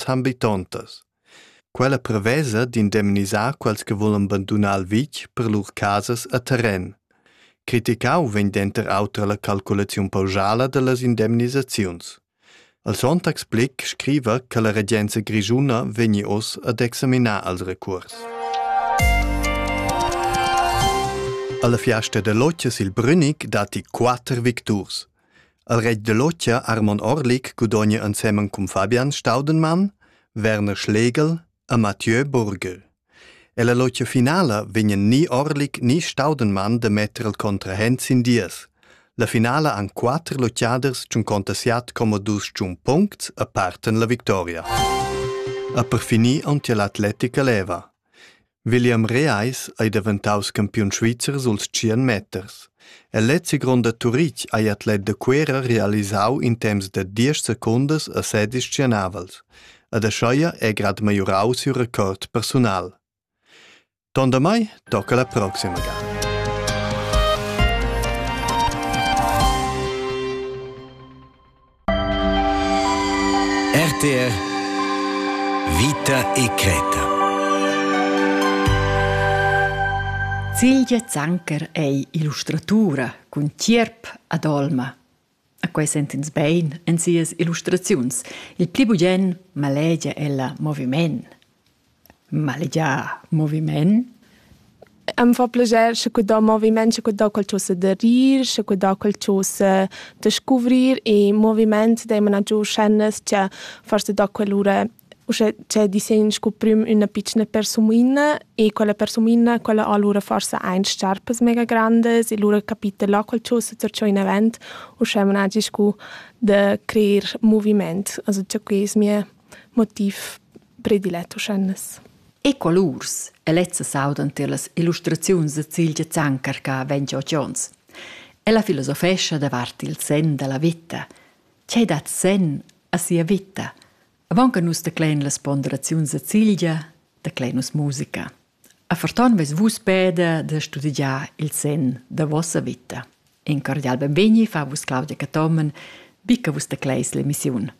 zambitontas. Quella prevesa d'indemnisar quels che volan bandunar il vitg per lur casas a terren. Criticau vegn denter auter la calculaziun pausala dallas indemnisaziuns. El Sonntag Blick scriva che la regenza grischuna vegni oz ad examinar els recurs. Alla fiasta dell'occhio sil Brünig datti quatter victurs. El retg da Lotgia Armon Orlik gudogna ensemen cun Fabian Staudenmann, Werner Schlegel e Mathieu Burgel. Ella lotgia finala vegnan ni Orlik ni Staudenmann da metter il contrahent sin dies. La finala han quatter lotgiaders tschun contasiat como dus tschun puncts e parten la victoria. E per finir on tia l'atletica leva. William Reais ei daventaus campiun svizzer suls tschien meters. El lezi gronda Turitg ei atlet da Cuera realisau in temps da diesch secundas a sedis tschienavels. Ad Ascheia è grad maiorau siu record persunal. Tondamai tocca la proxima gala. RTR Vita e creta. Silvia Zanker è illustratura cun tierp ad olma. A quai sentins bein en sias illustraziuns. Il pli bugen malegia ella moviment. malegiar moviment. Am fa plascher sche cudà moviment, sche cudà quel cho se da rir, sche cudà quel cho se da scuvrir e moviment daimana giò schennas cha fast da quell'ura uschè che disegn scu prüm üna pitschna persumiina e quella persumiina quella ha lura forsa aint sciarpas mega grandas e lura capita là quel cho se tracciò inavant uschè managi scu da creer moviment. Also cha que es mia motiv predilet uschennes. E colurs e lezza saudan tier las illustraziuns da Cilgia Zanker ca vegn giò Jones. Ella filosofescha davart il sen da la vita. Che dat sen a sia vita? Avonca nus declein las ponderaziuns da Cilgia, declein nus musica. A forton veis vus peda da studigiar il sen da vossa vita. In cordial benvegni fa vus Claudia Catomen, bica vus decleis l'emissiun.